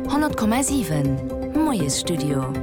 100,7 Moiesstudio.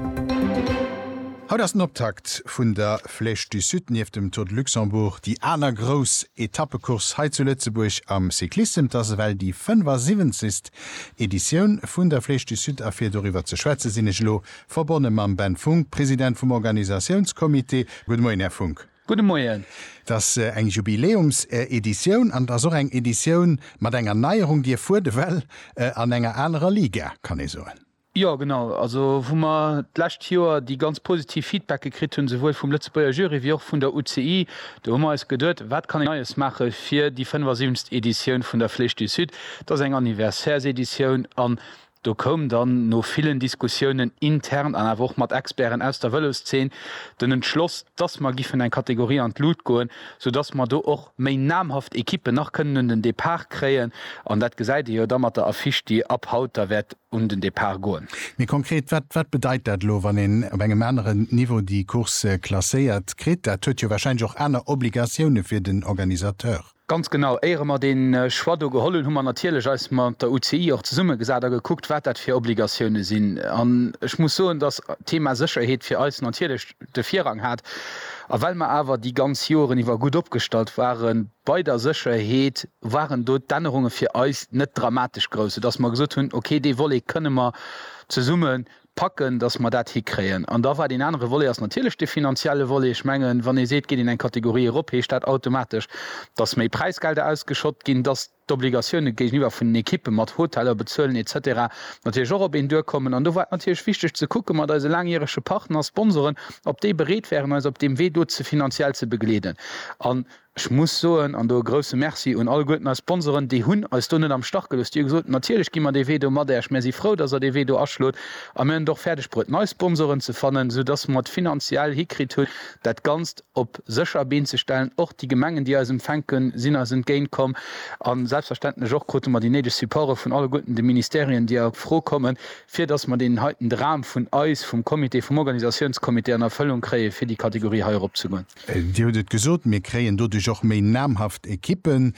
Haut ass den Optakt vun der Flèche du Sud, nieft dem Tour de Luxembourg déi aner grouss Etappecourse hei zu Lëtzebuerg am Cyclissem. Et ass ewell déi 75. Editioun vun der Flèche du Sud a fir doriwwer ze schwätze sinn ech elo verbonne mam Ben Funk, President vum Organisatiounscomité. Gudde Moien, Här Funk. Gudde Moien. Et ass eng Jubiläumseditioun an et ass och eng Editioun mat enger Neierung, déi erfuert ewell an enger anerer Liga, kann ee soen. Jo, genau. Also wou mer d'lescht Joer déi ganz positiv Feedbacke kritt hunn, souwuel vum Lëtzebuerger Jury wéi och vun der UCI, do hu mer eis geduet, Wat kann een Neies maache fir déi 75. Editioun vun der Flèche du Sud? Et ass eng Anniversaireseditioun an Do koum dann no villen Diskussiounen intern an awer och mat Experten aus der Vëloszeen den Entschloss, dass mer giffen eng Kategorie an d'Lut goen, soudass mer do och méi namhaft Ekippen nach kënnen un den Depart kréien. An dat gesäit ee jo da mat der Affiche, déi ab haut da wäert un den Depart goen. Méi konkret, wat bedeit dat elo, wann een op engem aneren Niveau déi Course klasséiert kritt? Dat huet jo warscheinlech och aner Obligatioune fir den Organisateur. Ganz genau. Éiere mer dee Choix do geholl hunn, hu mer natierlech eis mat der UCI och zesummegesat a gekuckt, wat dat fir Obligatioune sinn. An ech muss soen, dass d'Thema Sécherheet fir eis natierlech de Virrang hat. A well mer awer déi ganz Joren iwwer gutt opgestallt ware bei der Sécherheet, waren do d'Ännerunge fir eis net dramatesch grouss, soudass mer gesot hunn, okay, dee Volet kënne mer zesumme packen, dass mer dat hikréien. An da war deen anere Volet ass natierlech dee finanzielle Volet. Ech mengen, wann ee seet, geet een eng Kategorie erop, heescht dat automatesch, dass méi Präisgelder ausgeschott ginn, dass d'Obligatioune géigeniwwer vun den Ekippe mat Hoteller bezuelen et cetera natierlech och op een duerkommen. An do war et natierlech wichteg ze kucke mat eise laangjärege Partner, Sponsoren, ob déi bereet wären, eis op deem Wee do finanziell ze begleeden. An. Ech muss soen, an do e grousse Merci un alleguerten eis Sponsoren, déi hunn eis do net am Stach gelooss, déi hu gesot, natierlech gi mer dee Wee do mat Äerch, mär si frou, dass Der dee Wee do aschlot a mär hunn et och fäerdeg bruet nei Sponsoren ze fannen, sou dass mer et finanziell hikritt hunn, dat Ganzt op sécher Been ze stellen. Och déi Gemengen, déi eis empfänken, sinn eis entgéint komm a selbstverständlech och krute mer déi néideg Supporte vun alleguerten de Ministerien, déi a Fro kommen, fir dass mer deen heiten Dram vun eis, vum Comité, vum Organisatiounscomité an Erfëllung kréie fir déi Kategorie hei erop ze goen. Dir hutt et gesot, mir kréien doduerch och méi namhaft Ekippen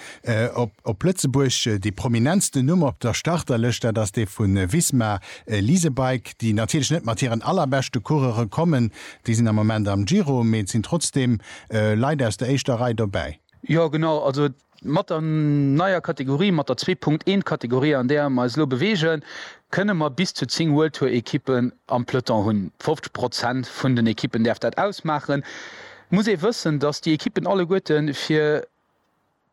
op Lëtzebuerg. Dee prominentsten Numm op der Starterlëscht, dat ass dee vu Visma Lease a Bike, déi natierlech net mat hiren allerbeschte Coureure kommen, déi sinn am Moment am Giro, mee et sinn trotzdeem Leit aus der éischter Rei dobäi. Jo genau, also et Mat der neier Kategorie, mat der zwee Punkt eent Kategorie an där mer eis elo beweegen, kënne mer bis zu zéng World Tour Ekippen am Peloton hunn. 50 Prozent vun den Ekippen däerf dat ausmaachen. Muss ee wëssen, datt déi Ekippen alleguerte fir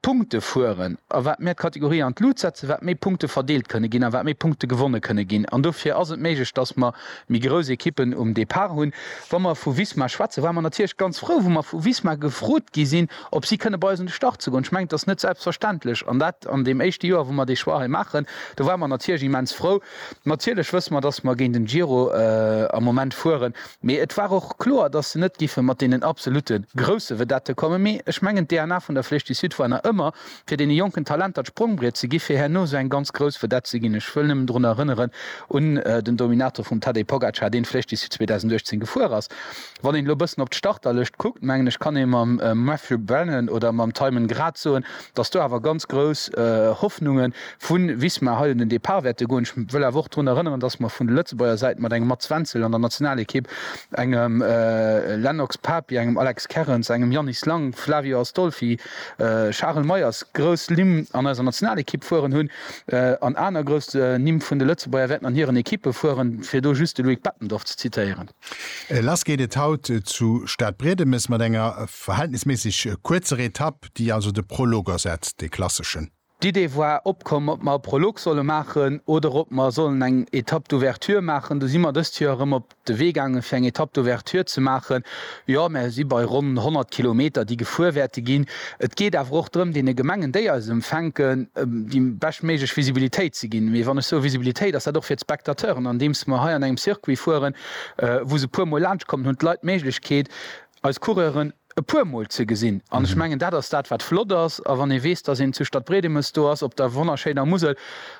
Punkte fueren a wat mer d'Kategorie an d'Lut setzen, wat méi Punkte verdeelt kënne ginn a wat méi Punkte gewonne kënne ginn. An dofir ass et méiglech, datt mer méi grouss Ekippen um Depart hunn. Wa mer vu Visma schwätzen, ware mer natierlech ganz frou, wou mer vu Visma gefrot gi sinn, ob si kënne bei eis un de Start ze goen. Ech mengen, et ass net selbstverständlech, an dat an deem éischte Joer, wou mer dee Choix hei maachen. Do ware mer natierlech immens frou. Natierlech wësse mer, dass mer géint en Giro am Moment fueren, mee et war och kloer, dass se net géife mat deenen absolute grousse Vedette kommen. Mee ech mengen, d'DNA vun der Flèche du Sud war nach ëmmer, fir deene jonken Talenter d'Sprongbriet ze ginn, fir herno esou eng ganz grouss Vedette ze ginn. Ech wëll nëmmen drun erënneren un den Dominator vum Tadej Pogacar, deen d'Flèche du Sud 2018 gefuer ass. Wann een elo e bëssen op d'Starterlëscht kuckt, mengen ech kann ee mam Matthew Brennan oder mam Tymon grad soen, datt do awer ganz grouss Hoffnunge vu Visma hei un den Depart wäerte goen. Ech wëll awer och drun erënneren, datt mer vun der Lëtzebuerger Säit mat engem Mats Wenzel an der Nationalekipp, engem Lennox Papi, engem Alex Kerrens, engem Yannis Lang, Flavio Astolfi, Charel Meyers grouss Nimm an eiser Nationalekipp fueren hunn an aner grouss Nimm vun de Lëtzebuerger wäerten an hiren Ekippe fueren, fir do just de Loïc Bettendorf ze zitéieren. Lass geet et haut zu Stadbriedemes mat enger verhältnisméisseg kuerzer Etapp, déi also de Prolog ersetzt, dee klasseschen. D'Idee war opkomm, ob mer e Prolog solle maachen oder ob mer sollen eng Etapp d'ouverture maachen. Du si mer dëst Joer erëm op de Wee gaange fir eng Etapp d'ouverture ze maachen. Jo, mer si bei ronn 100 Kilometer, déi gefuer wäerte ginn. Et geet awer och drëm, deene Gemengen, déi eis empfänken, déi beschtméiglech Visibilitéit ze ginn. Mee wann ech soe Visibilitéit, ass dat och fir d'Spectateuren, andeems mer hei an engem Circuit fueren, wou se e puermol laanschtkommen, hunn d'Leit d'Méiglechkeet, eis Coureuren e puermol ze gesinn. An ech mengen, dat ass dat, wat flott ass. A wann ee weess, dass een zu Stadbriedemes do ass, op der wonnerschéiner Musel,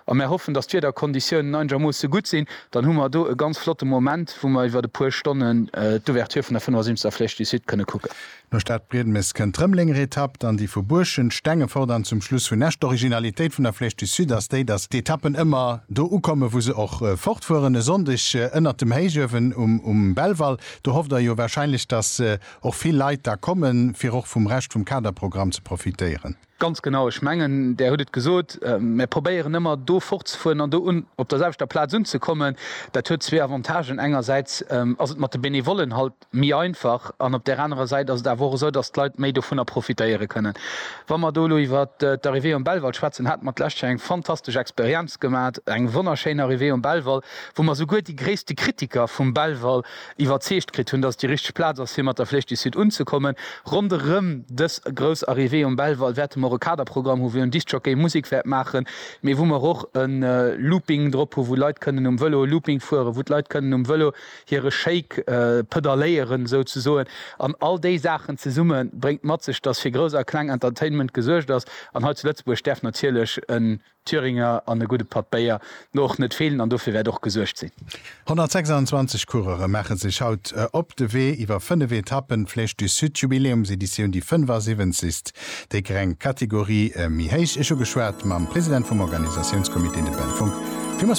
a mer hoffen, dass d'Wiederkonditiounen einegermoosse gutt sinn, dann hu mer do e ganz flotte Moment, wou mer iwwert e puer Stonnen d'Ouverture vun der 75. Flèche du Sud kënne kucken. No Stadbriedemes kënnt d'Rëmelenger Etapp, dann déi vu Buurschent, Stengefort an zum Schluss vun Esch. D'Originalitéit vun der Flèche du Sud ass déi, datt d'Etappen ëmmer do ukommen, wou se och fortfueren. E Sonndeg ënnert dem Héichuewen um Belval, do hofft Der jo wahrscheinlech, datt och vill Leit da kommen, fir och vum Rescht vum Kaderprogramm ze profitéieren. Ganz genau, ech mengen där hutt et gesot, mär probéieren ëmmer do fortzefueren an do un op der selwechter Plaz unzekommen. Dat huet zwee Avantagen, engersäits ass et mat de Benevollen halt méi einfach an op där anerer Säit ass et awer och esou, datt d'Leit méi dovunner profitéiere kënnen. Wa mer do elo iwwer d'Arrivée um Belval schwätzen, hate mer d'lescht Joer eng fantastesch Experienz gemat, eng wonnerschéin Arrivée um Belval, wou mer souguer déi gréisste Kritiker vum Belval iwwerzeegt kritt hunn, dass et déi richteg Plaz ass, fir mat der Flèche du Sud unzekommen. Ronderëm dës grouss Arrivée um Belval wäerte mer och e Kaderprogramm hu wou en Discjockey Musek wäert maachen, mee wou mer och e Looping drop hu wou Leit kënnen um Vëlo e Looping fueren, wou d'Leit kënnen um Vëlo hire Shake pedalléieren souzesoen. An all déi Saachen zesumme bréngt mat sech, dass fir grouss a kleng Entertainment gesuergt ass. An hei zu Lëtzebuerg däerf natierlech e Thüringer an e gudde Patt Béier no och net feelen an dofir wäert och gesuergt sinn. 126 Coureure maache sech haut op de Wee iwwer 5 Etappen, Flèche du Sud Jubiläumseditioun, déi 75. Déi greng Kategorie méi héich. Ech hu geschwat mam President vum Organisatiounscomité, de Ben Funck.